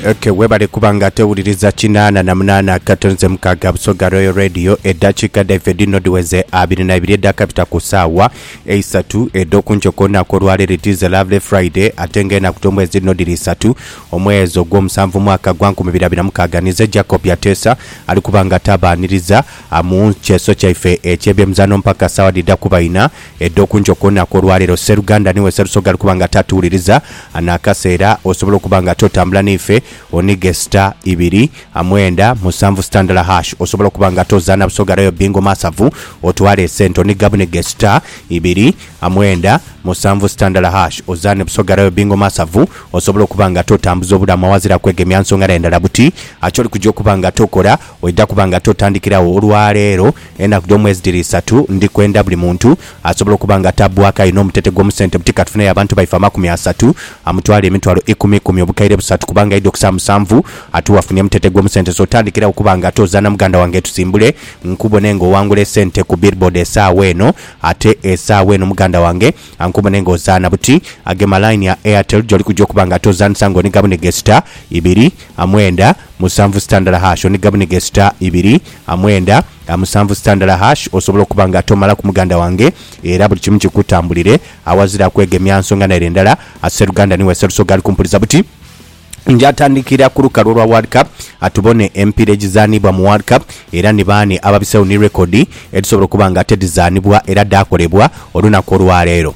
Okay, webale kuba nga tewuliriza kinaana na munaana akatonze mukaaga Busoga Royal Radio eddakiika dhaife dhino dhiweze abiri na ibiri edhakabita ku saawa eisatu edh'oku nkyoko olunaku olwaleero it is a lovely Friday ate nga enaku dh'omwezi dhino dhiri isatu omwezi ogw'omusanvu mwaka gwa nkumi biri abiri na mukaaga nize Jacob Yateesa ali kuba nga tabaaniriza ah, mu kyeso kyaife eky'ebyemizaano mpaka saawa dhidha kuba ina Edho ku nkyo kwonaku olwaleero, sseruganda niwe Sserusoga ali kuba nga tatuwuliriza, anakasa era osobole okuba nga totambula neife, onige star ibiri, mwenda, musanvu star ndala hash osobole okuba nga tozaana Busoga Royal Bingo Masavu otwale esente oniga bunige star ibiri, mwenda, musanvu star ndala hash ozaane Busoga Royal Bingo Masavu osobole okuba nga totambuza obulamu awazira kwegemya nsonga dhae ndala buti. Kyoli kuja okuba nga tokola, oidha kuba nga totandikiragho olwaleero. Enaku dh'omwezi dhiri isatu. Ndi kwenda buli muntu asobola okuba nga atabbwaku aye n'omutete gw'omu sente buti ka tufuneyo abantu baife amakumi asatu, amutwale emitwalo ikumi ikumi obukaire busatu kubanga aidha okusa musanvu ate wafunye mutete gw'omu sente so tandikirawo okuba nga ate ozaana muganda wange tusimbule nkubone nga owangula esente ku billboard esaawa eno ate esaawa eno muganda wange ankubone nga ozaana buti agema line ya Airtel gyoli kuja okuba nga ate ozaanisa nga oniga buniga esita ibiri a mwenda musanvu sita ndala hash oni gabunige sita ibiri a mwenda a musanvu sita ndala hash osobola okuba nga tomalaku muganda wange era buli kimu kikutambulire awazira kwegemya nsonga naire ndala a seruganda niwe serusoga ali kumpuliza buti nja tandikira ku lukalu olwa world cup a tubone emipira egizanibwa mu world cup era ni baani ababisegho ni rekodi edhisobola okuba nga ate dhizanibwa era dhaakolebwa olunaku olwaleero.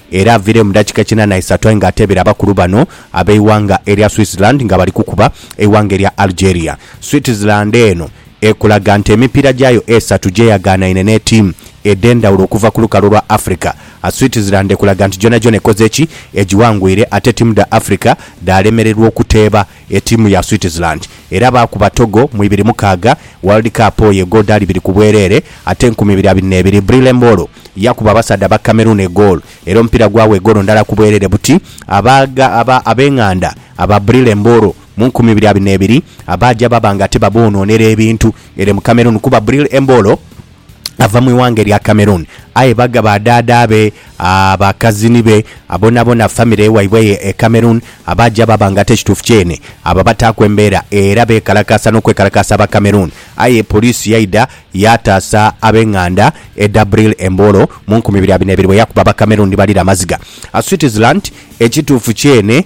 Era avire mu dakika kinana isatu aye nga atebera abakulu bano abeighanga erya Switzerland nga bali kukuba eighanga erya Algeria. Switzerland eno ekulaga nti emipiira gyayo esatu gyeyaghanaine ne tiimu edhendhawulo okuva ku lukalu lwa Africa. Switzerland ekulaga nti gyona gyona ekoze ki egiwangwire ate tiimu dha Africa dhalemererwa okuteeba. Etiimu ya Switzerland era baakuba Togo mu ibiri mukaaga World Cup oyo egodaali ibiri ku bwereere ate nkumi ibiri abiri n'ebiri. Brille Embolo yakuba abasaadha ba Cameroon egoolo era omupiira gwagho egoolo ndala ku bwereere buti aba aba ab'eng'anda aba Brille Embolo mu nkumi ibiri abiri n'ebiri abaaja baba nga ate baboonoonera ebintu ere mu Cameroon kuba Brille Embolo ava mu ighanga erya Cameroon aye baga ba dhaadha be, ba kazini be, bonabona famire waibwe eyo e Cameroon abaaja baaba nga ate ekituufu kyene abo abataaku embeera era beekalakaasa n'okwekalakaasa aba Cameroon aye poliisi yaidha yaataasa ab'enganda e Dabril e Mboro mu nkumi ibiri abiri na ibiri bwe yakuba aba Cameroon ni balira amaziga. Switzerland Ekituufu kyene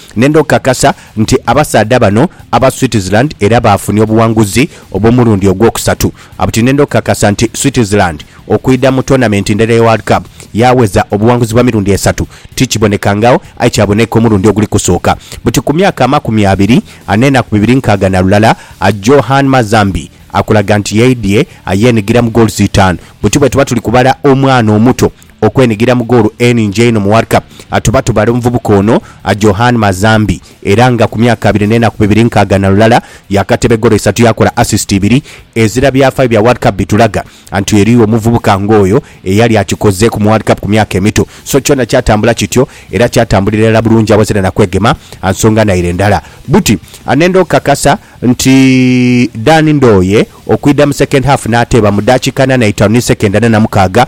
Nenda okukakasa nti abasaadha bano aba Switzerland era baafunia obuwanguzi obw'omulundi ogwokusatu. Buti nenda okukakasa nti Switzerland okwidha mu toonamenti ndala eya World Cup yaaweza obuwanguzi bwa mirundi esatu tikibonekangagho aye kyaboneka omulundi oguli kusooka buti ku myaka amakumi abiri n'enaku bibiri nkaaga na lulala. Johan Mazambi akulaga nti yaidhie yeenigira mu goals itaanu. Buti bwetuba tuli kubala omwana omuto Okwenigira mu goolo eningi einho mu World Cup atuba tubala omuvubuka ono Johan Mazambi era nga ku myaka abiri n'enaku bibiri nkaaga na lulala yaakateba egoolo isatu yaakola assist ibiri. Ezira byafaayo bya World Cup bitulaga nti eriyo omuvubuka ng'oyo eyali akikozeeku mu World Cup ku myaka emito. So kyona kyatambula kityo era kyatambulira irala bulungi awazira na kwegema nsonga naire ndala. Buti anenda okukakasa nti Dan Ndoye okwidha mu second half n'ateeba mu daakika ana n'eitaanu ni second ana na mukaaga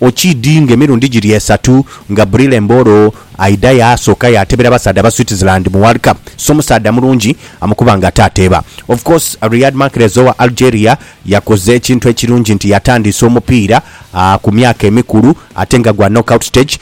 Okiidinga emirundi giri esatu nga Brille Embolo aidha yaasooka yaatebera abasaadha aba Switzerland mu World Cup, so musaadha mulungi amukuba nga ataateeba. Of course, Riyad Mahrez owa Algeria yakoze ekintu ekirungi nti yatandiisa omupiira ku myaka emikulu ate nga gwa knockout stage.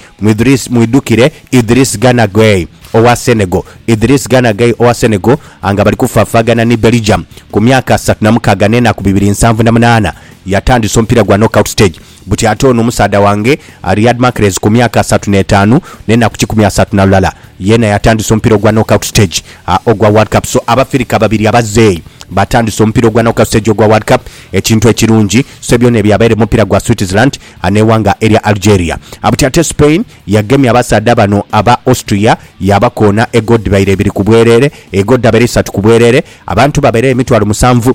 Mwidhukire Idriss Gana Gueye owa Senegal Idriss Gana Gueye owa Senegal nga bali kufaafaagana ni Belgium ku myaka asatu na mukaaga n'enaku bibiri nsanvu na munaana, yatandiisa omupiira gwa knockout stage. buti ate ono omusaadha wange Riyad Mahrez ku myaka asatu n'etaanu n'enaku kikumi asatu na lulala yeena yatandisa omupiira ogwa knockout stage ogwa World Cup so Abafirika babiri abazeeyi baatandisa omupiira ogwa knockout stage ogwa World Cup ekintu ekirungi so byona ebyo byabaire mu mupiira gwa Switzerland n'eighanga erya Algeria buti ate Spain yagemye abasaadha bano aba Austria yaabakoona egoodi dhaire ibiri ku bwerere egoodi dhabaire isatu ku bwerere abantu babaire emitwalo musanvu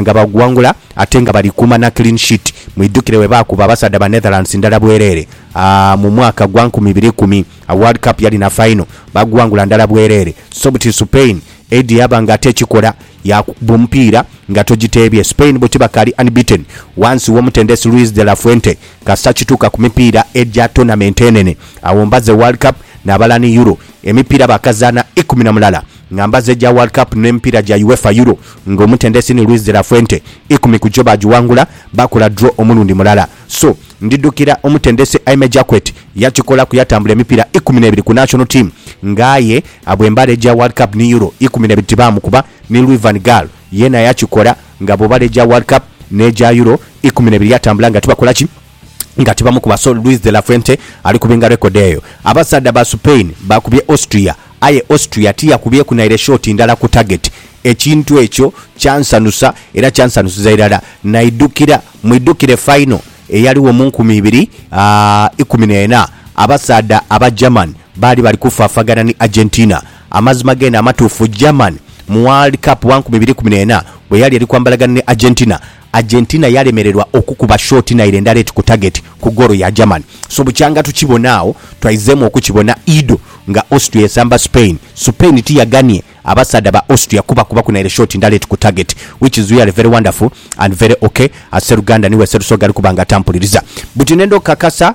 Nga baguwangula ate nga bali kuuma na clean sheet. Mwidhukire bwe baakuba abasaadha ba Netherlands ndala bwereere mu mwaka gwa nkumi ibiri ikumi, World Cup yali na fayino, baaguwangula ndala bwereere. So buti Supain eidhi yaaba nga ate ekikola yaakukuba omupiira nga togiteebye. Supain bo tibakaali unbeaten wansi w'omutendesi Luis de la Fuente kasita kituuka ku mipiira egya tournament enene, awo mbaze World Cup nabalani Euro, emipiira baakazaana ikumi na mulala. nga mbazi egya World Cup n'emipiira gya UEFA Euro nga omutendesi ni Luis de la Fuente, ikumi ku gyo baagiwangula, baakola draw omulundi mulala. So, ndidhukira omutendesi Aime Jacquet yakikolaku yatambula emipiira ikumi n'ebiri ku national team nga aye abo embala egya World Cup ni Euro ikumi n'ebiri tibaamukuba, ni Louis van Gaal yeena yakikola nga abo bala egya World Cup n'egya Euro ikumi n'ebiri yatambula nga tibakola ki? nga tibamukuba so Luis de la Fuente ali kubinga rekodi eyo. Abasaadha ba Supain baakubye Austria aye Austria tiyakubyeku naire shoti ndala ku tageti. Ekintu ekyo kyansanusa era kyansanusiza irala naidhukira, mwidhukire fayino eyaligho mu nkumi ibiri ikumi n'ena abasaadha aba German baali bali kufaafagana ni Argentina. Amazima geene amatuufu, German mu World Cup wa nkumi ibiri ikumi n'ena bwe yali eri kwambalagana ni Argentina, Argentina yalemererwa okukuba shoti naire endala eti ku tageti ku goolo ya Germany. So bukyanga tukibona agho, twaizeemu okukibona Ido nga Austria esamba Spain. Supain tiyaganie abasaadha ba Austria kubakubaku naire shoti ndala eti ku tageti which is really very wonderful and very ok as seruganda niwe serusoga ali kuba nga atampuliriza. Buti nenda okukakasa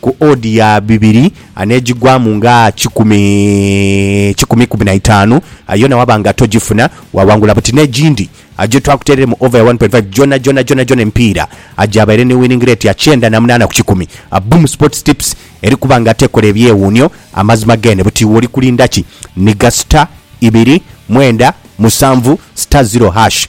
Ku odi ya bibiri anegigwamu nga kikumi kikumi ikumi na itaanu, aye yona waba nga togifuna, waghangula buti. N'egindi aje twakuteerere mu over ya one point five gyonagyona gyonagyona emipiira aje abeere ni winning rate ya kyenda na munaana ku kikumi. Boom Sports Tips eri kuba nga tekola ebyewuunyo, amazima geene. Buti iwe oli kulinda ki? Nhiga star ibiri mwenda musanvu star zero hash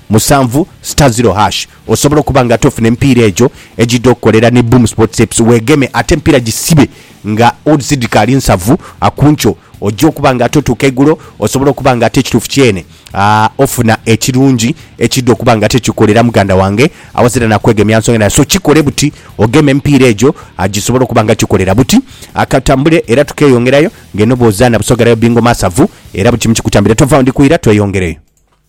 musanvu star zero hash osobola okuba nga ate ofuna emipiira egyo egyidha okukolera ni Boom Sports Apps wegeme ate emipiira gisibe nga odds dhikaali nsavu kunkyo ojja okuba nga ate otuuka eigulo osobola okuba nga ate ekituufu kyene ofuna ekirungi ekyidha okuba nga ate kikolera muganda wange awazira nakwegemya nsonga yona so kikole buti ogeme emipiira egyo gyisobole okuba nga gyikolera buti katambule era tukeyongerayo nga eno bwozaana Busoga era yo Bingo masavu era buli kimu kikutambira tovaawo ndikuwira tweyongereyo.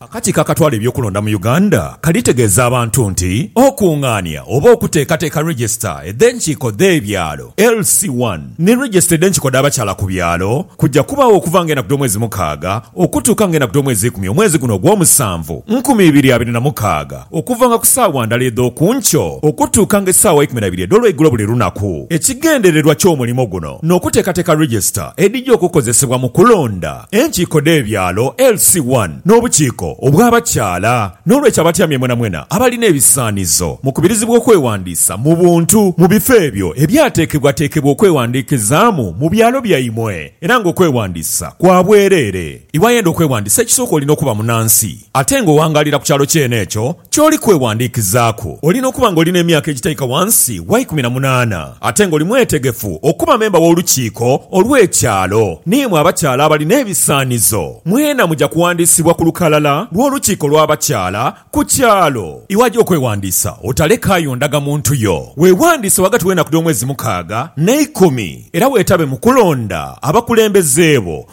Akakiiko akatwala eby'okulonda mu Uganda kalitegeeza abantu nti okungaania oba okuteekateeka Register edh'enkiiko dh'ebyalo, LC one, ni Register edh'enkiiko dh'abakyala ku byalo kuja kubaagho okuva nga enaku dh'omwezi mukaaga okutuuka nga enaku dh'omwezi ikumi omwezi guno ogw'omusanvu nkumi ibiri abiri na mukaaga okuva nga ku saawa ndala edh'oku nkyo okutuuka nga esaawa ikumi na ibiri edh'olweigulo buli lunaku. Ekigendererwa ky'omulimo guno n'okuteekateeka Register edhija okukozesebwa mu kulonda. Enkiiko dh'ebyalo LC I n'obukiiko obw'abakyala. N'olwekyo abatyamye mwenamwena abalina ebisaanizo mukubirizibwa okwewandiisa mu buntu mu bifo ebyo ebyateekebwateekebwa okwewandiikizaamu mu byalo byaimwe era nga okwewandiisa kwa bwereere. Iwayenda okwewandiisa ekisooka olina okuba munansi ate nga owangaalira ku kyalo kyene ekyo. Ky'oli kweghandiikizaaku, Oli n'okuba nga oli n'emyaka egitaika wansi wa ikumi na munaana ate nga oli mwetegefu okuba memba w'olukiiko olw'ekyalo. N'imwe abakyala abali n'ebisaanizo, mwena muja kughandiisibwa ku lukalala lw'olukiiko lw'abakyala ku kyalo. Iwajo okweghandiisa, otalekaayo ndagamuntu yo. Weeghandiise ghagati w'enaku dh'omwezi mukaaga n'eikumi, era weetabe mu kulonda abakulembeze bo.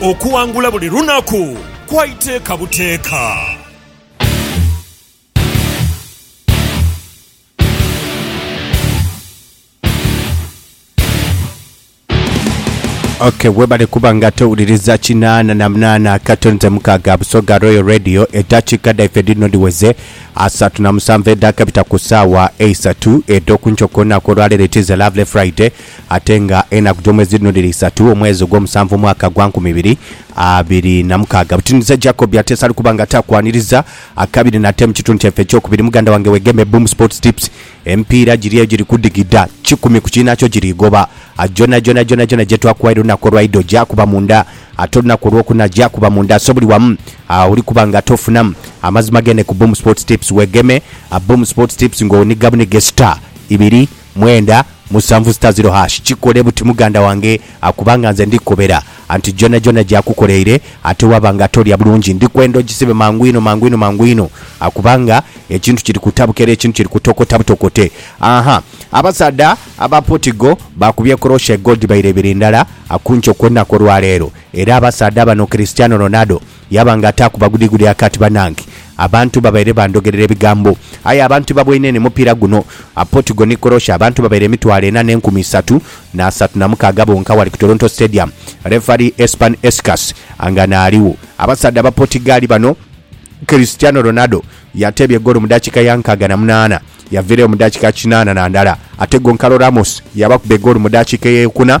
Okuwangula buli lunaku kwa iteeka buteeka. Ok webale kuba nga towuliriza kinaana na munaana akatonze mukaaga Busoga Royal Radio eddakiika dhaife dhino dhiweze asatu na musanvu edhaakabita ku ssaawa eisatu edh'oku nkyo ku lunaku olwaleero it is a lovely Friday Ate nga enaku dh'omwezi dhino dhiri isatu, omwezi ogw'omusanvu omwaka gwa nkumi ibiri abiri na mukaaga. Butinhiza Jacob ate sali kuba nga takwaniriza akabiri nate mu kitundu kyaife ekyokubiri. Muganda wange wegeme Boom Sports Tips. Emipiira giri eyo giri kudigida kikumi ku kiinhakyo giri goba. Gyonhagyonha gyonhagyonha gyetwakuwaire olunaku olwaido gyakuba munda ate olunaku olwokuna gyakuba munda so buli wamu oli kuba nga ate ofunamu amazima gene ku Boom Sports Tips. Wegeme Boom Sports Tips nga onhiga bunhige star ibiri mwenda musanvu sita ziro hash kikole buti muganda wange akuba nga nze ndikukobera anti gyonhagyonha gyakukoleire ate waba nga tolya bulungi ndikwenda ogisibe mangu inho mangu inho mangu inho akuba nga ekintu kiri kutabuka era ekintu kiri kutokota butokote ahaa abasaadha aba portigal bakubye korosha egol dhibaire ibiri ndala akunkyo kwonaku olwaleero era abasaadha bano Cristiano Ronaldo Yaba nga ataaku bagudigudi akati, banange. Abantu babaire bandogerera ebigambo. Aye aba nti baboine ni mupiira guno. A Portugal ni Croatia abantu babaire emitwalo ena n'enkumi isatu na asatu na mukaaga bonka wali ku Toronto Stadium. Refari Espan Escas nga n'aligho. Abasaadha aba Portigali bano. Cristiano Ronaldo yateebye goolo mu dakika ya nkaaga na munaana, yaviireyo mu dakika kinaana na ndala ate Goncalo Ramos yabakuba egoolo mu dakika ey'ekuna.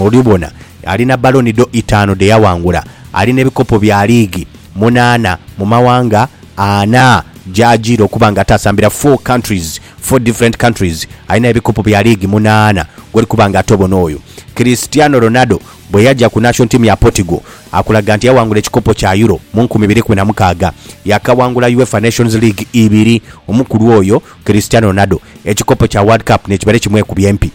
Oli bona, ali na Baloni d'O itaanu dhe yaghangula, ali n'ebikopo bya liigi munaana mu maghanga ana gy'ajiira okuba nga ataasambira, four countries, four different countries, alina ebikopo bya liigi munaana gw'oli kuba nga atobona oyo. Cristiano Ronaldo bwe yaja ku Nation Team ya Portugal, akulaga nti yaghangula ekikopo kya Euro mu nkumi ibiri kumi na mukaaga, yakaghangula UEFA Nations League ibiri. Omukulu oyo, Cristiano Ronaldo, ekikopo kya World Cup n'ekibere kimwekubye mpi.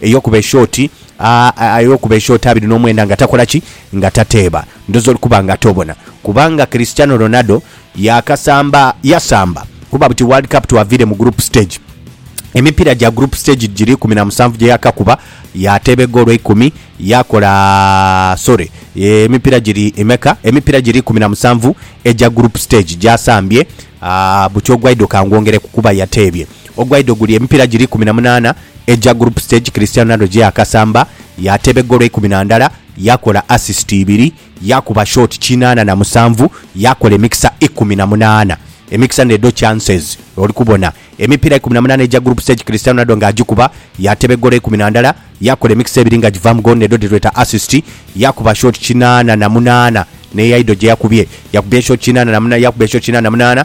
Eyokuba eshoti a, a, eyokuba eshoti abiri nomwenda nga takola ki? Nga tateeba. Ndoza oli kuba nga tobona. Kubanga Cristiano Ronaldo yakasamba, yasamba kuba buti World Cup twaviire mu group stage. Emipiira gya group stage giri ikumi na musanvu gye yakakuba, yateeba egoolo eikumi, yakola, sorry, emipiira giri emeka? Emipiira giri ikumi na musanvu egya group stage gyasambye. A, buti ogwaidho kangwongereku kuba yateebye. Ogwaidho guli emipiira giri ikumi na munaana egya Group Stage Cristiano Ronaldo gye yaakasamba, yaateeba eggoolo eikumi na ndala, yaakola asisiti ibiri, yaakuba shooti kinaana na musanvu, yaakola emikisa ikumi na munaana. Emikisa n'edho chances, oli kubona. Emipiira ikumi na munaana egya Group Stage Cristiano Ronaldo nga agikuba, yaateeba eggoolo eikumi na ndala, yaakola emikisa ebiri nga givaamu goolo n'edho dhe tweta asisiti, yaakuba shooti kinaana na munaana. N'eyaidho gye yakubye, yakubye shooti kinaana na munaana, yaakuba shooti kinaana na munaana.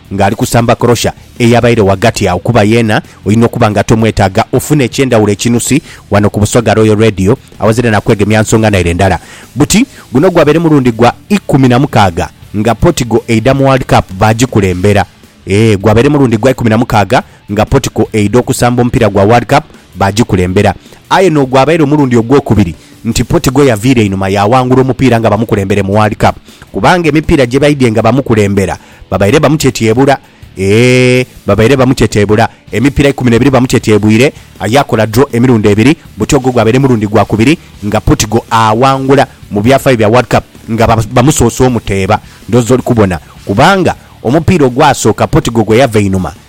nga ali kusamba korosha eyabaire ghagati agho kuba yeena oina okuba nga tomwetaaga ofune ekyendhawulo ekinusi ghano ku Busoga Royal Radio awazira na kwegemya nsonga naire ndala. Buti guno gwabaire mulundi gwa ikumi na mukaaga nga Portigal eidha mu World Cup baagikulembera. Eeh gwabaire mulundi gwa ikumi na mukaaga nga Portigal eidha okusamba omupiira gwa World Cup baagikulembera. Aye n'ogwabaire omulundi ogwokubiri nti Portigal yaviira einhuma yaawangula omupiira nga bamukulembere mu World Cup kubanga emipiira gye baidhye nga bamukulembera Babaire bamutyetyebula eeh Babaire bamutyetyebula Emipira ikumi nebiri bamutyetyebwire aye akola draw emirundi ebiri buti ogwo gwabaire murundi gwa kubiri nga Portugal aawangula mu byafayo bya World Cup nga bamusoose omuteeba ndhooza oli kubona kubanga omupiira ogwasooka Portugal gwe yava einhuma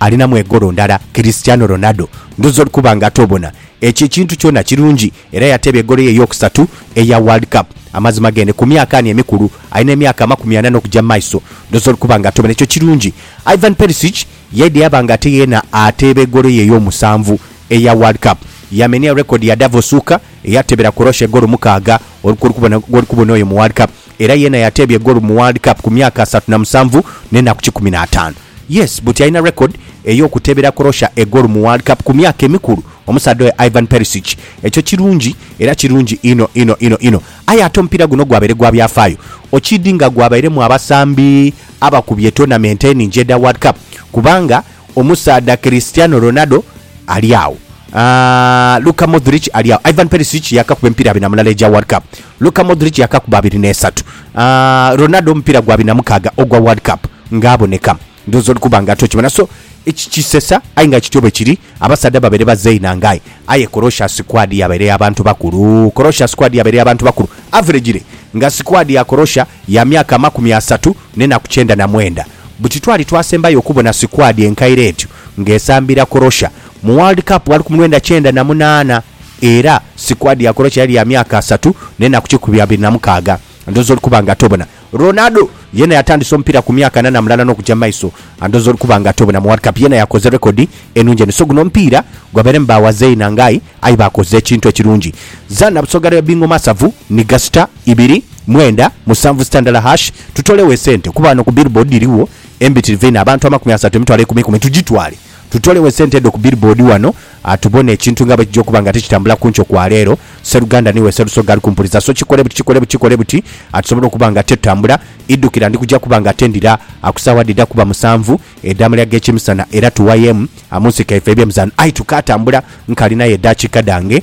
alinamu egolo ndala Cristiano Ronaldo ndhoozi oli kuba nga toobona. Ekyo ekintu kyona kirungi era yateeba egolo ye ey'okusatu eya World Cup. Amazima geene ku myaka ani emikulu, alina emyaka amakumi ana n'okugya mu maiso, ndhoozi oli kuba nga toobona. Ekyo kirungi. Ivan Perisic yaidha yaba nga ate yeena ateeba egolo ye ey'omusanvu eya World Cup. Yamenia rekodi ya Davo Suker eyateebera Croatia egolo mukaaga, oli kwoli kubona gwoli kubona oyo mu World Cup. Era yena yateebye goolu mu World Cup ku myaka asatu na musanvu n'enaku kikumi na ataanu. Yes, buti alina record ey'okuteebera Croatia egoolu mu World Cup ku myaka emikulu omusaadha oyo Ivan Perisic. Ekyo kirungi era kirungi inho inho inho inho. Aye ate omupiira guno gwabaire gwa byafaayo okiidhi nga gwabairemu abasambi abakubye tournament eningi edha World Cup kubanga. Omusaadha Cristiano Ronaldo ali agho. Aah, Luka Modric ali agho. Ivan Perisic yaakakuba emipiira abiri na mulala egya World Cup. Luka Modric yaakakuba abiri n'esatu. Aah, Ronaldo omupiira gwa abiri na mukaaga ogwa World Cup nga aboneka. Ndhooza oli kuba nga ate okimanya. So, eki kisesa aye nga kityo bwe kiri. Abasaadha babaire bazainha nga aye. Aye Croatia squad yabaire ya bantu bakulu. Croatia squad yabaire ya bantu bakulu. Average le nga squad ya Croatia ya myaka amakumi asatu n'enaku kyenda na mwenda. buti twali twasembayo okubona sikwadi enkaire etyo ng'esambira Croatia mu World Cup gha lukumi lwenda kyenda na munaana era sikwadi ya Croatia yali ya myaka asatu n'enaku kikumi abiri na mukaaga. Ndhooza oli kuba nga tobona. Ronaldo yeena yatandisa omupiira ku myaka ana na mulala n'okuja mu maiso. Ndhooza oli kuba nga tobona. Mu World Cup yeena yakoze rekodi enungi eno. So guno omupiira gwabairemu ba wazei na ngai aye baakoze ekintu ekirungi. Zana Busoga Lea Bingo Masavu ni Gasita. ibiri, mwenda, musanvu sitandala hash, tutolegho esente kuba ghano ku billboard dhirigho embitirivu einho abantu amakumi asatu, emitwalo eikumi ikumi tugitwale tutolegho esente edho ku billboard ghano tubone ekintu nga bwekija okuba nga tikitambula ku nkyo kwa leero Sseruganda niiwe Sserusoga ali kumpuliza so kikole buti kikole buti kikole buti tusobole okuba nga tetutambula idhukira ndi kuja kuba nga ate ndira ku saawa dhida kuba musanvu edhamalya g'ekimisana era tuwayemu mu nsiko yaife eby'emizaano aye tukaatambula nkalinayo edaakiika dhange